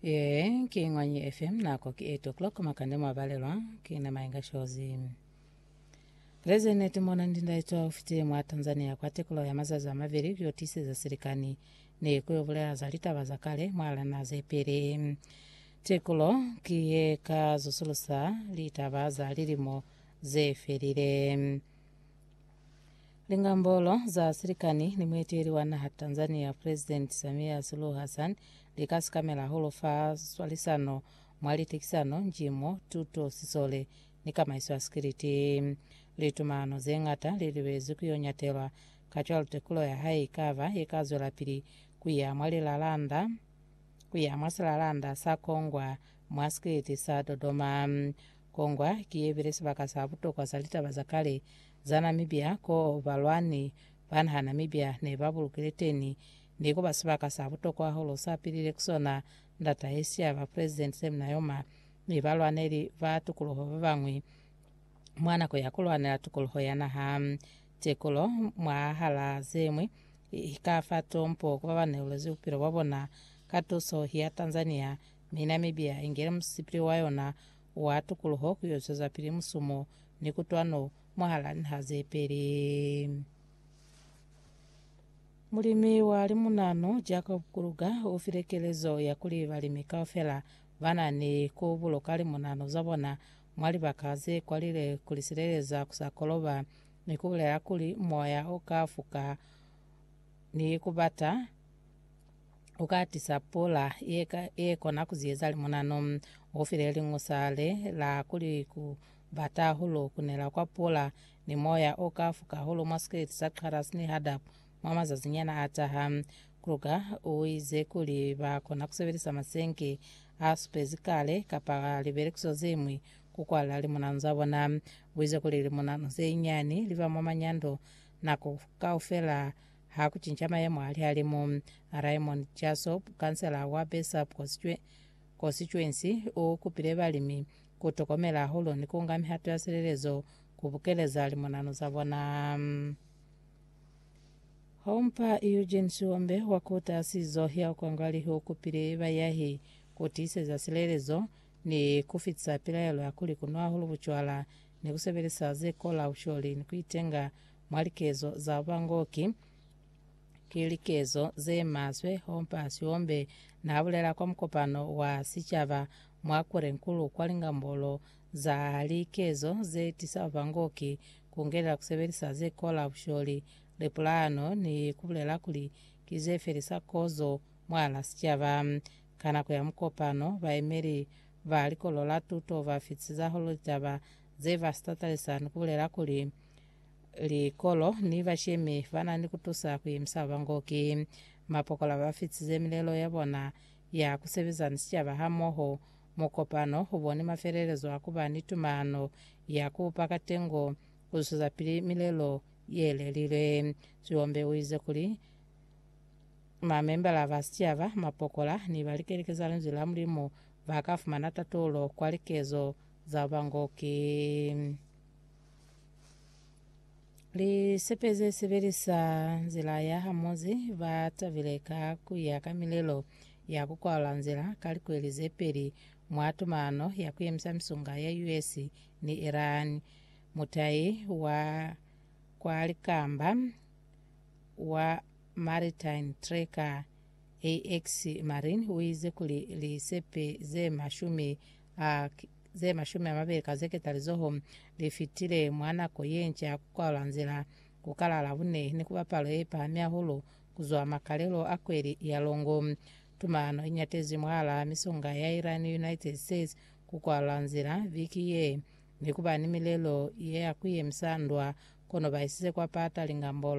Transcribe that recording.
Ee, ki Ngwanyi FM, nako ki 8 o'clock, makande mwa balelwa, ki na Mayenga Shozi. Leze neti mona ndinda itwa ufiti mwa Tanzania kwa tekulo ya mazazi amabili vyo tiseza silikani ne kuyo bulela za litaba za kale mwa lana ze pili. Tekulo ki ye ka zusulusa litaba za lilimo ze felile. Lingambolo za silikani ni mueteli wa naha Tanzania President Samia Suluhu Hassan li ka sikamela hahulu fa swalisano mwa litekisano, njimo, tuto, sisole ni kamaiso ya sikiliti. Litumalano ze ñata li lubezwi ku yo ñatelwa, kacwalo tekulo ya hae i ka ba ye ka zwelapili ku ya mwa lilalanda ku ya mwa silalanda sa kongwa mwa sikiliti sa Dodoma. Kongwa ki ye bile sibaka sa butokwa sa litaba za kale za Namibia ko balwani ba naha Namibia ne ba bulukile teni, mi kuba sibaka sa butokwa hahulu sa pilile ku sona ndata ye siya ba President Sam Nujoma ni balwaneli ba tukuluho ba bañwi mwa nako ya ku lwanela tukuluho ya naha. Tekulo mwahal'a ze ñwi i ka fa tompo ku ba ba neulezi bupilo bwa bona ka tuso ya Tanzania Mi Namibia ingile musipili wa yona wa tukuluho ku yo zwezapili musumo ni kutwano mwahala nha ze peli. Mulimi wa limunanu Jacob Kruger ufile kelezo ya kuli balimi kaufela bana ni ku buluka limunanu za bona mwa libaka ze kwalile kuli sileleza ku sa koloba, ni kubulela kuli moya uka fuka ni kubata. u ka tisa pula ye, ka, ye kona ku ziyeza limunano. U file liñusa le la kuli ku bata hahulu ku nela kwa pula ni moya o ka fuka hahulu mwa sikeleti sa Qaras ni Hadab mwa mazazinyana a taha. Kruger u ize kuli ba kona ku sebelisa masenke a supezi kale kapa libelekiso ze ñwi ku kwalla limunano za bona. U ize kuli limunano ze nyani li ba mwa manyando nako kaufela Ha ku cinca mayemo a lihalimu, Raymond Jasob, kansela wa Bessap Kosituensi, u kupile balimi ku tokomela hahulu ni ku nga mihato ya silelezo ku bukeleza limonano za bona. Hompa Eugene Siombe wa Kuta Sizo ya Kwangwalihi u kupile bayahi ku tiiseza silelezo ni ku fitisa pilaelo ya kuli ku nwa hahulu bucwala ni ku sebelisa ze kola, usholi, ni ku itenga Mwa likezo za ba ngo ki, ki likezo ze maswe hompa Siombe na bulela kwa mukopano wa sicaba mwa Kwerenkulu kwa lingambolo za likezo ze tisa ba ngo ki ku ngelela ku sebelisa ze kola busholi, lipulano ni ku bulela kuli ki ze felisa kozo mwala sicaba. Ka nako ya mukopano, bayemeli ba Likolo la Tuto ba fitisizaho litaba ze ba si tatalisa ni ku bulela kuli, Likolo ni bashemi ba na ni ku tusa ku yemisa ba bango ki mapokola ba fitize milelo ya bona ya ku sebeza ni sicaba hamoho. Mukopano u boni mafelelezo a ku ba ni tumano ya ku pa katengo ku zwezapili milelo ye lelilwe. Sihombe u ize kuli, Mamembala ba sicaba, mapokola, ni ba likeleke za Linzwi la Mulimu ba ka fumana tatulo kwa likezo za ba bango ki. Lisepe ze sebelisa nzila ya hamozi ba tabile ka ku ya ka milelo ya ku kwala nzila ka likweli ze peli mwa tumano ya ku yemisa misunga ya US ni Iran. Mutai wa kwa likamba wa Maritime Tracker AX Marin uize kuli lisepe ze mashumi a ze mashumi amabeli ka zeketalizoho lifitile mwa nako yenca ya kukwalula nzila ku kala la Labone ni kuba palo yepahami hahulu kuzwa makalelo a kweli ya longo. Tumano inyatezwi mwahala misonga ya Iran ni United States kukwalula nzila viki ye ni kuba ni milelo ya kuyemisa ndwa, kono baisize kwa pata lingambolo.